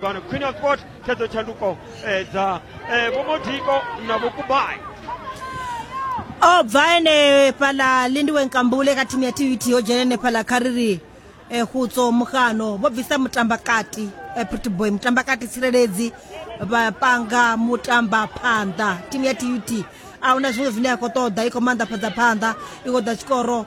pano queen of sport tshedzo tshanduko eh, dza eh, vho modiko na vho kubai o bva ene fhaḽa lindiwe nkambule kha thimu ya tut yo dzhena ene fhaḽa kha ri ri um hutso mugano vho bvisa mutambakati um pretty boy mutambakati tsireledzi vha panga mutamba phanḓa thimu ya tut a huna zwiṅwe zwine ya khou ṱoḓa i khou maanḓafhadza phanḓa i khou ḓa tshikoro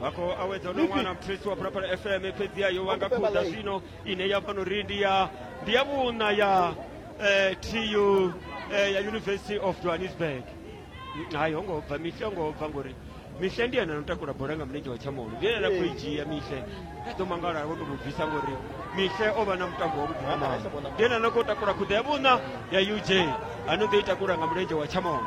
vha khou awedza no wana mphisi wa phalaphala fm fhedzi ya yo wanga khuda zwino ine ya fhano ri ndi ya ndi ya vhuna ya eh, tu eh, ya university of johannesburg hayi ho ngo bva mihle ngo bva ngori mihle ndi yena no takula bola nga mulenzhe wa tshamolo ndi yena khou i dzhia mihle a ḓo mangala vho to mu bvisa ngori mihle o vha na mutambo wa vhuḓi mama ndi yena no khou takula khuda ya vhuna ya uj ano ḓo i takula nga mulenzhe wa tshamolo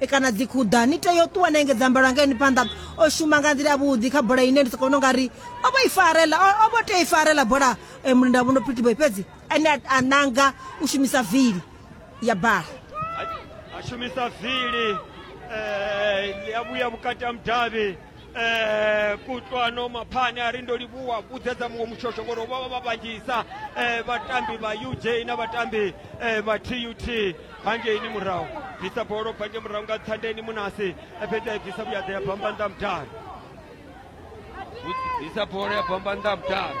e kana dzikhuḓa ni tea u ṱuwa na engedza mbalo angeni phanḓa o shuma nga nḓila yavhuḓi kha bola ine ndi soko vhona ungari o vho i farela o vho tea i farela bola e, mulinda vhuno phitiboy fhedzi ane a nanga u shumisa vili ya bala a shumisa vili eh, ya vhuya vhukati ha mudavhi eh kutlwano maphane a ri ndo livhuwa vhudzedza muṅwe mushosho ngori vha vha vha vhanzhisa eh vhatambi vha uj na vhatambi eh vha tut hangeini murahu bvisa bolo bva nge murahu nga thandeni munasi eh, fhedzi a i bvisa vhuyaḓa ya bamba nnḓa mudalo bvisa bolo ya bamba nnḓa mudalo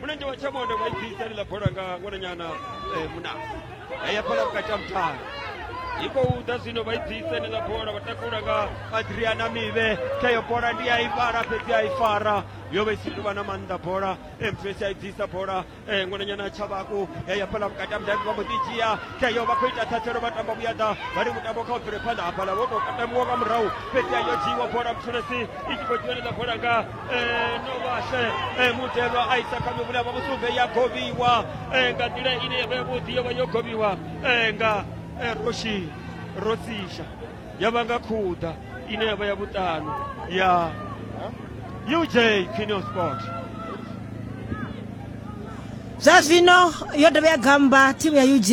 mulenzhe wa tshamondo vha ibvisa ḽi ḽa bola nga ṅwananyana eh, muna ya fhala vhukati ha muthala i khou ḓa zwino vha ibvisa ḽi ḽa bola vha takula nga adriana mivhe kha yo bola ndi a i fara fhedzi a i fara yo vha i si tuvha na maanḓa bola mfesi a ibvisa bola eh, ṅwananyana tshavhaku ya fhala vhukati ha mudavhi vha mbo ḓi dzhia kha yo vha khou ita thathelo vha tamba vhuyaḓa vha ri mutambo kha u bvele phanḓa hafhala wo tou katamiwa nga murahu fhedzi a yo dzhiiwa bola mthulesi i tshi khou dzhiwa ḽi ḽa bola nga Eh, no vhashe eh, mutelwa a isa kha mivhula vha vhusumbe ya govhiwa eh, nga nḓila ine ya vha yavhuḓi yo vha yo govhiwa eh, nga eh, roshi rosisha ya vha nga khuḓa ine ya vha ya vhuṱanu ya uj quineo sport zwa zwino yo dovha ya gamba thimu ya uj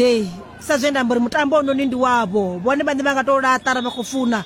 sa zwe nda amba uri mutambo ononi ndi wavho vhone vhaṋe vha nga tou laṱara vha khou funa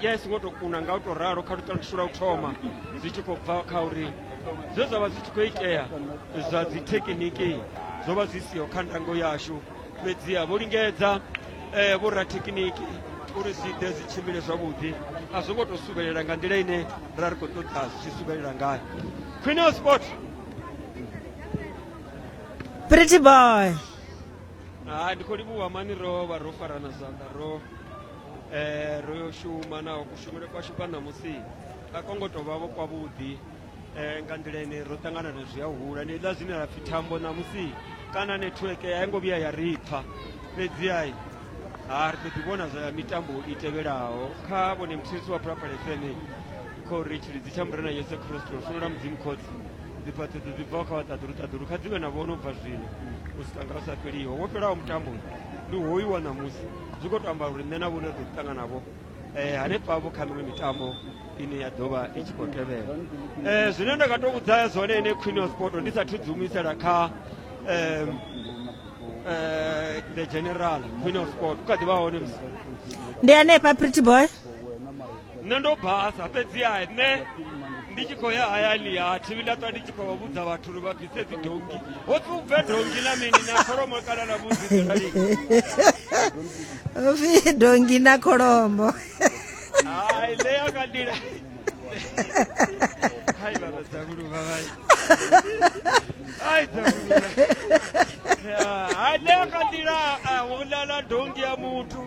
ya i songo to kuna nga u to ralo kha luṱalutsho lwa u thoma zwi tshi khou bva kha uri zwe zwa vha zwi tshi khou itea zwa dzi thekiniki zwo vha zwi siho kha ndango yashu fhedziha vho lingedza um vho rathekiniki uri zwi ḓe zwi tshimbile zwavhuḓi a zwo ngo to suvhelela nga nḓila ine ra ri khou ṱoḓa zwi tshi suvhelela ngayo khwine o sport pretty boy ha ndi khou livhuwa mani ro vha ro farana zwanḓa ro eh, ro yo shuma naho kushumele kwashu kwa ṋamusi a ko ngo tou vha vho kwavhuḓi um nga nḓila ine ro ṱangana na zwi a hula ni ḽa zwine ra pfhi thambo ṋamusi kana netiweke a i ngo vhuya ya ri pfha fhedziai ha ri ḓo ḓi vhona zwa mitambo i tevhelaho kha vhone muthirisi wa phulaphula fm khou ri tshilidzi tsha murena yesu kristo ri funola mudzimu khotsi dziphaṱhedzo dzi bvaho kha vhaṱaḓulu ṱaḓulu kha dzi vhe na vhono bva zwino u swika nga u sa fheliho wo fhelaho mutambo ndi hoyu wa ṋamusi zwi khou to amba uri nṋe na vhone ri ḓo ḓi ṱangana vho eh, hanefha vho kha miṅwe mitambo ine ya ḓo vha i tshi khou tevhela eh, zwine nda nga to vhudza zwone ine queen of sport ndi sathu dzi humisela kha eh, eh, the general queen of sport u kha ḓi vha hone ndi hanefha pretty boy nṋe ndo basa fhedziha nṋe ndi tshi khou ya hayani ha thi vhila ṱwa ndi tshi khou vhudza vhathu uri vha bvise dzidongi ho pfi u bve dongi na mini na kholomo kana na vhudzidzirali pfi dongi na kholomo hai ṋe ya ka ndila hai vhana dzavhuluvha vai hai dzavhuluvha hai ṋe ya ka ndila a vhulala dongi ya muthu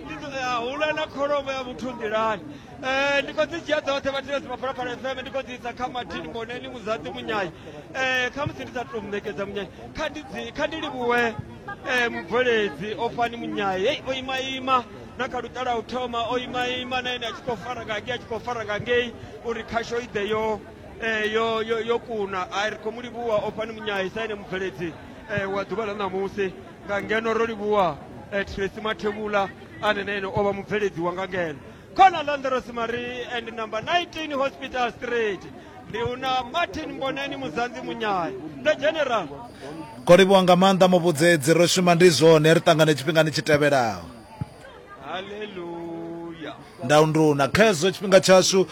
ndi ndo- ya, hula na kholomo ya muthu nḓilani Eh, ndi khou dzi dzhia dzoṱhe vhathilesi maphalaphala fm ndi khou dzi isa kha martin moneni muzaḓi munyayi Eh, kha musi ndi sa tou muṋekedza munyayi kha ndi dzi- kha ndi livhuwe eh, mubveledzi o fani munyayi hei o imaima na kha luṱa lwa u thoma o imaima na ene a tshi khou fara nga ngei a tshi khou fara nga ngei uri khasho i ḓe yo eh, yo yo yo kuna a ri khou mu livhuwa o fani munyayi sa ene mubveledzi eh, wa ḓuvha ḽa ṋamusi nga ngeno ro livhuwa eh, tracy mathevhula ane na ene o vha mubveledzi wa nga ngeno khona landeros marie and number 19 hospital street ndi una martin mboneni muzanzi munyaya ndo general Kho livhuwa nga maanḓa muvhudzedzi ro shuma ndi zwone ri ṱangane tshifhingani tshi tevhelaho. ndaundu na khezwo tshifhinga tshashu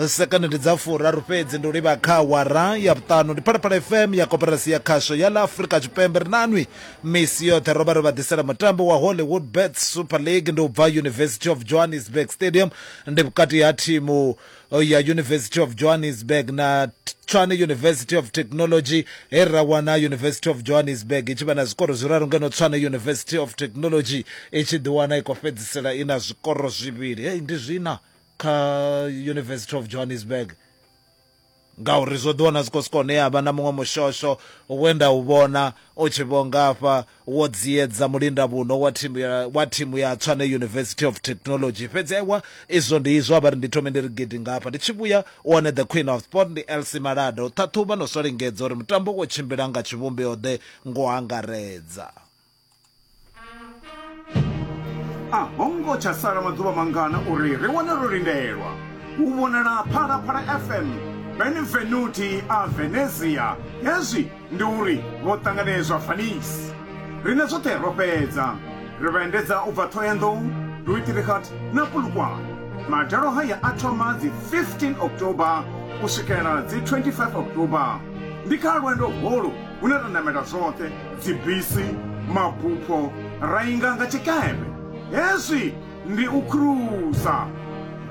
sekani ndi dza furaru fhedzi ndi u livha kha wara ya vhuṱanu ndi phalaphala fm ya koperasi ya khasho ya ḽa afrika tshipembe ri nanwi misi yoṱhe ro vha ri vha ḓisela mutambo wa hollywood bet super league ndi u bva university of johannesburg stadium ndi vhukati ha thimu uh, ya university of johannesburg na tshwane university of technology he ra wana university of johannesburg i tshi vha na zwikoro zwiraru ngeno tshwane university of technology i tshi ḓiwana i khou fhedzisela i na zwikoro zwivhili hei ndi zwina kha university of johannesburg ngauri zwo ḓiwana zwi khou siko hune ya vha na muṅwe mushosho wenda u vhona u tshi vho ngafha Wo dziedza mulindavhuno wa thimu ya, wa thimu ya Tswane University of Technology. Fhedzi aiwa, izwo ndi izwo, a vha ri ndi thome ndi ri gidi ngafha. Ndi tshi vhuya, u wane the queen of sport ndi Elsie Malada. U ṱhaṱhuvha no swa lingedza uri mutambo wo tshimbila nga tshivhumbeo-ḓe ngo angaredza. A ho ngo tsha sala maḓuvha mangana uri ri wane ro lindelwa u vhonala Phalaphala FM, Benvenuti a Venezia, hezwi Ndi uri vho ṱanganedzwa Venice. Riṋe zwoṱhe ro fhedza. Ri vha endedza u bva Thohoyandou, Duitrichard na Polokwane. Madalo haya a thoma dzi 15 October u swikela dzi 25 October. Ndi kha lwendo holu hune ra namela zwoṱhe, dzibisi, mabupho, ra inga nga tshikepe. Hezwi ndi u khurusa.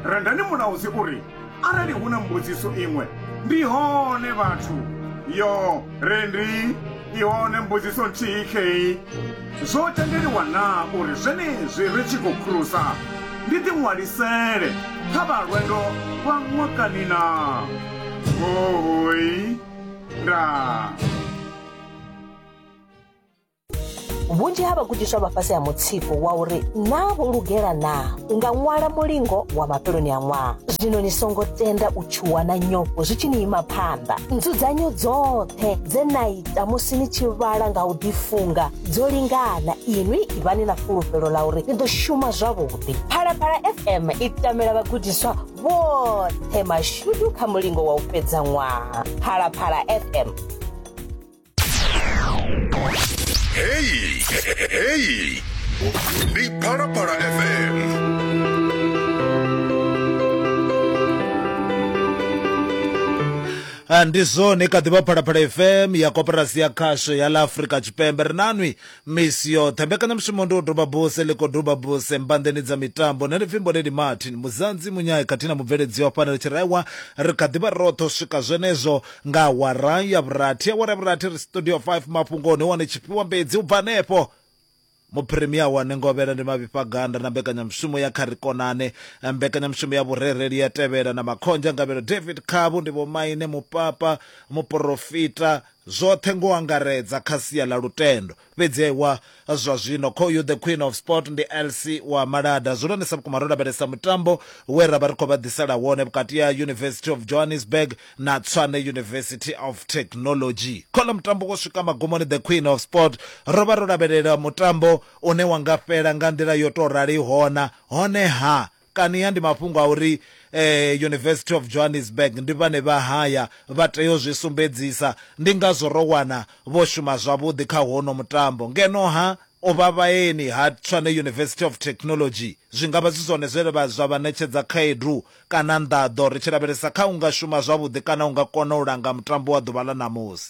Rendani Mulaudzi u ri, Arali hu na mbudziso iṅwe, ndi hone vhathu. Yo re ndi i hone mbudziso nthihi khei. Zwo tendeliwa naa uri zwenezwi ri tshi khou khurusa ndi ḓiṅwalisele kha vha lwendo lwa ṅwakani naa? Huhuy! Ndaa! vhunzhi ha vhagudiswa vha fhasi ha mutsiko wa uri naa vho lugela naa u nga ṅwala mulingo wa mafheloni a ṅwaha zwino ni songo tenda u tshuwa na nyofho zwi tshi ni ima phanḓa nzudzanyo dzoṱhe dze na ita musi ni tshi vhala nga u ḓifunga dzo lingana inwi ivhani na fulufhelo ḽa uri ni ḓo shuma zwavhuḓi phalaphala fm i tamela vhagudiswa vhoṱhe mashudu kha mulingo wa u fhedza ṅwaha phalaphala fm Hey, hey, Big Para Para FM. Ah, ndi zwone kha ḓivha phalaphala fm ya koporasi ya khasho ya ḽa afrika tshipembe ri nanwi misi yoṱhe mbekanyamushumo ndi u doba buse liko doba buse mbanḓeni dza mitambo na lipfimbo leli martin muzanzi munyayi khathihi na mubveledzi wa fana ri tshi raiwa ri kha ḓivha roṱhe u swika zwenezwo Nga awara ya vhurathi, awara ya vhurathi ri Studio 5 mafhungoni, wane tshifhiwa mbedzi u bva hanefho. Muphirimiya wa Nengovhela ndi Mavhifha Ganda na mbekanyamushumo ya Kha Ri Konane. Mbekanyamushumo ya vhurereli ya tevhela na Makhonzha Ngavhelo David Khavhu ndi vhomaine mupapa, muporofita, zwoṱhe ngo angaredza kha sia ḽa lutendo. Fhedzi wa zwa zwino khoyu The Queen of Sport ndi Elsi wa Malada. Zwi lonesa vhukuma ro lavhelesa mutambo we ra vha ri khou vha ḓisela wone vhukati ha University of Johannesburg na Tshwane University of Technology. Khola mutambo wo swika magumoni The Queen of Sport ro vha ro lavhelela mutambo une wa nga fhela nga nḓila yo tou raliho na honeha Kania ndi mafhungo a uri University of Johannesburg ndi vhane vha haya, vha tea u zwi sumbedzisa. Ndi ngazwo ro wana vho shuma zwavhuḓi kha hono mutambo. Ngeno-ha, o vha vhaeni ha Tshwane University of Technology. Zwi nga vha zwi zwone zwe zwa vha ṋetshedza khaedu kana nḓaḓo ri tshi lavhelesa kha u nga shuma zwavhuḓi kana u nga kona u langa mutambo wa ḓuvha ḽa ṋamusi.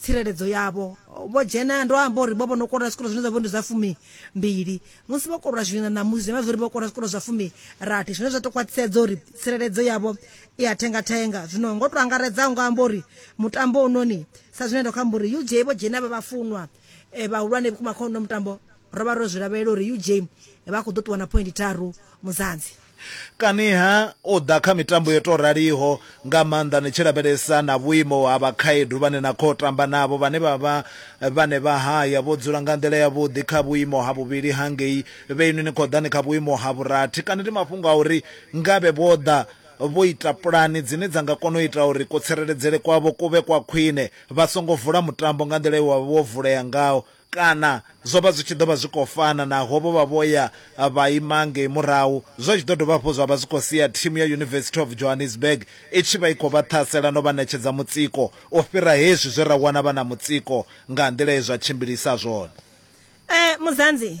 tsireledzo yavho vho dzhena ndo amba uri vho vho no koloda zwikolo zwine zwa vha ndi zwa fumi mbili musi vho koloda zwino na musi vha zwi vho koloda zwikolo zwa fumi rathi zwine zwa to khwaṱhisedza uri tsireledzo yavho i ya thenga thenga zwino ngo to angaredza nga amba uri mutambo unoni sa zwine ndo kha amba uri UJ vho dzhena vha vhafunwa eh, vhahulwane vhukuma kha uno mutambo ro vha ro zwi lavhelela uri UJ vha khou ḓo ṱuwa na point tharu muzanzi Kaniha u ḓa kha mitambo yo tou raliho, nga maanḓa ni tshi lavhelesa na vhuimo ha vhakhaedu vhane na khou tamba navho vhane vha vha vhane vha haya vho dzula nga nḓila yavhuḓi kha vhuimo ha vhuvhili hangei, vhe inwi ni khou ḓa ni kha vhuimo ha vhurathi, kana ndi mafhungo a uri ngavhe vho ḓa vho ita pulani dzine dza nga kona u ita uri kutsireledzele kwavho ku vhe kwa khwine vha songo vula mutambo nga nḓila ye wa vha wo vulea ngaho Kana, zwo vha zwi tshi ḓo vha zwi khou fana naho vho vha vho ya vha ima ngei murahu, zwa tshi ḓo dovha hafhu zwa vha zwi khou sia thimu ya University of Johannesburg i tshi vha i khou vha ṱhasela no vha ṋetshedza mutsiko u fhira hezwi zwe ra wana vha na mutsiko nga nḓila ye zwa tshimbilisa zwone. Muzanzi.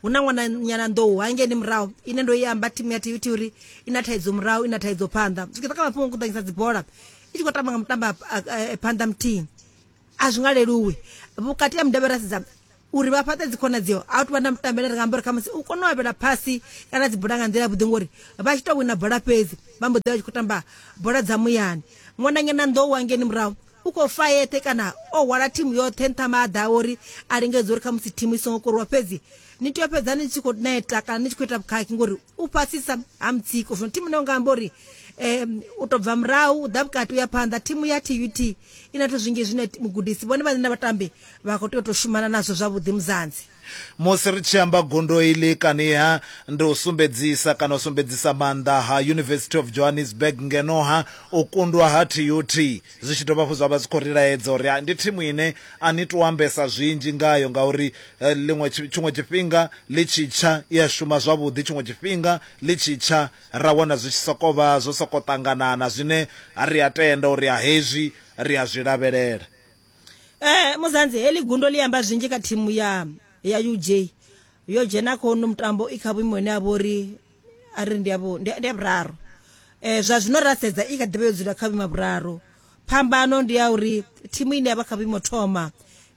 hu na ṅwana nyana nḓou hangeni murahu ine ndo i amba timu ya tv thi uri i na thaidzo murahu i na thaidzo phanḓa zwi kha mafhungo kuḓanyisa dzibola i tshi khou tamba nga mutamba eh, phanḓa muthihi a zwi nga leluwi vhukati ha mudavhe ra sedza uri vha fhaṱe dzikhonadzeo a u tuvha na mutambele ri nga amba uri khamusi u kone u avhela phasi kana dzibola nga nḓila vhuḓi ngori vha tshi tou wina bola fhedzi vha mbo ḓi vha tshi khou tamba bola dza muyani ṅwananyana nḓou wangeni murahu u khou fa yeṱhe kana o hwala thimu yoṱhe nṱha maḓa a uri a lingedza uri khamusi thimu i songo koriwa fhedzi ni tea u fhedza ni tshi khou neta kana ni tshi khou ita vhukhakhi ngori u fhasisa ha mutsiko zwino thimu ine u nga amba uri um u tou bva murahu u ḓa vhukati u ya phanḓa thimu ya tut i na zwithu zwinzhi zwine mugudisi vhone vhaṋe na vhatambi vha khou tea u tou shumana nazwo zwavhuḓi muzanzi Musi ri tshi amba gundo iḽi kaniha ndi u sumbedzisa kana u sumbedzisa maanḓa ha University of Johannesburg ngeno ha u kundwa ha TUT zwi tshi dovha hafhu zwa vha zwi khou ri laedza uri ndi thimu ine a ni tou ambesa zwinzhi ngayo ngauri ḽiṅwe tshiṅwe tshifhinga ḽi tshi tsha i a shuma zwavhuḓi, tshiṅwe tshifhinga ḽi tshi tsha ra wana zwi tshi sokou vha zwo sokou ṱanganana zwine ri a tenda uri hezwi ri a zwi lavhelela. Eh, muzanzi heḽi gundo ḽi amba zwinzhi kha thimu ya ya uj yo dzhena kha uno mutambo i kha vhuimo ine ya vha uri a ri ndi ya vhu- ndi ya ndi ya vhuraru um zwa zwino ra sedza i kha ḓivha yo dzula kha vhuimo ha vhuraru phambano ndi ya uri thimu ine ya vha kha vhuimo thoma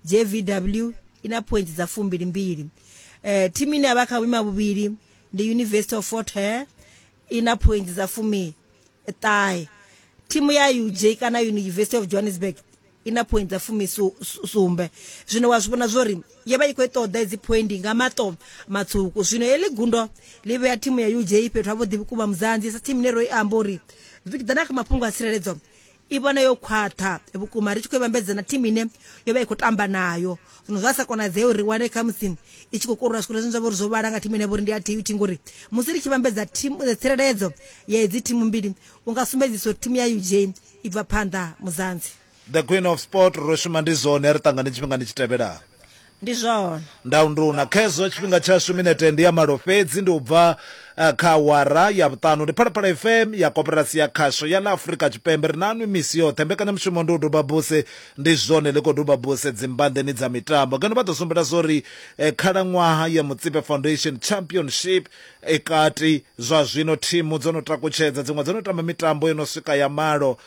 jvw i na points dza fumbilimbili um thimu ine ya vha kha vhuimo ha vhuvhili ndi university of fort hare i na phointsi dza fumiṱahe thimu ya uj kana university of johannesburg i na phointsi dza fumisumbe zwino wa zwi vhona zwo ri yo vha i khou i ṱoḓa edzi phoindi nga maṱo matswuku zwino heḽi gundo ḽi vhea thimu ya uj fhethu havhuḓi vhukuma muzanzi sa thimu ine ro i amba uri vikidana kha mafhungo a tsireledzo i vhone yo khwaṱha vhukuma ri tshi khou i vhambedza na thimu ine yo vha i khou tamba nayo zwino zwa sa konadzee uri ri wane kha musi i tshi khou korora zwikoro zwine zwa vha uri zwo vhala nga thimu ine vha uri ndi ya tut ngori musi ri tshi vhambedza eh, tsireledzo ya hedzi thimu mbili u nga sumbedzisa uri thimu ya uj i bva phanḓa muzanzi the queen of sport ro shuma ndi zwone ri ṱangane tshifhingani tshi tevhelaho Ndi zwone. Ndaunduna, Khezwo tshifhinga tshashu minete ndi ya malo fhedzi, ndi u bva kha awara ya vhuṱanu. Ndi Phalaphala FM ya Koporasi ya Khasho ya ḽa Afrika Tshipembe. Ri naanwi misi yoṱhe. Mbekanyamushumo ndi u duba buse. Ndi zwone, ḽi khou duba buse dzimbanḓeni dza mitambo. Ngeno vha ḓo sumbela zwa uri khalaṅwaha ya Mutsipe Foundation Championship i kati. Zwa zwino thimu dzo no takutshedza, dziṅwe dzo no tamba mitambo yo no swika ya malo.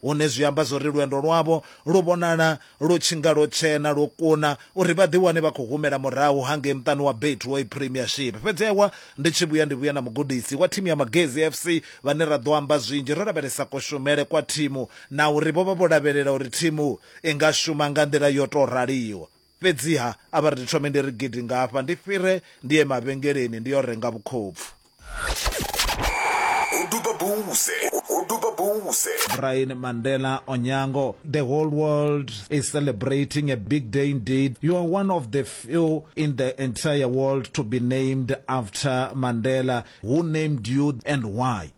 hune zwi amba zwauri lwendo lwavho lu vhonala lu tshi nga lwo tshena, lwo kuna uri vha ḓiwane vha khou humela murahu hangei muṱani wa Betway Premiership. Fhedzi ewa ndi tshi vhuya ndi vhuya na mugudisi wa thimu ya Magesi FC vhane ra ḓo amba zwinzhi ro lavhelesa kushumele kwa thimu na uri vho vha vho lavhelela uri thimu i nga shuma nga nḓila yo tou raliho. Fhedziha a vha ri ndi thome ndi ri gidi ngafha ndi fhire ndi ye mavhengeleni ndi yo renga vhukhopfu. Ho duba buse, ho duba buse. Brian Mandela Onyango, The whole world is celebrating a big day indeed. You are one of the few in the entire world to be named after Mandela. Who named you and why?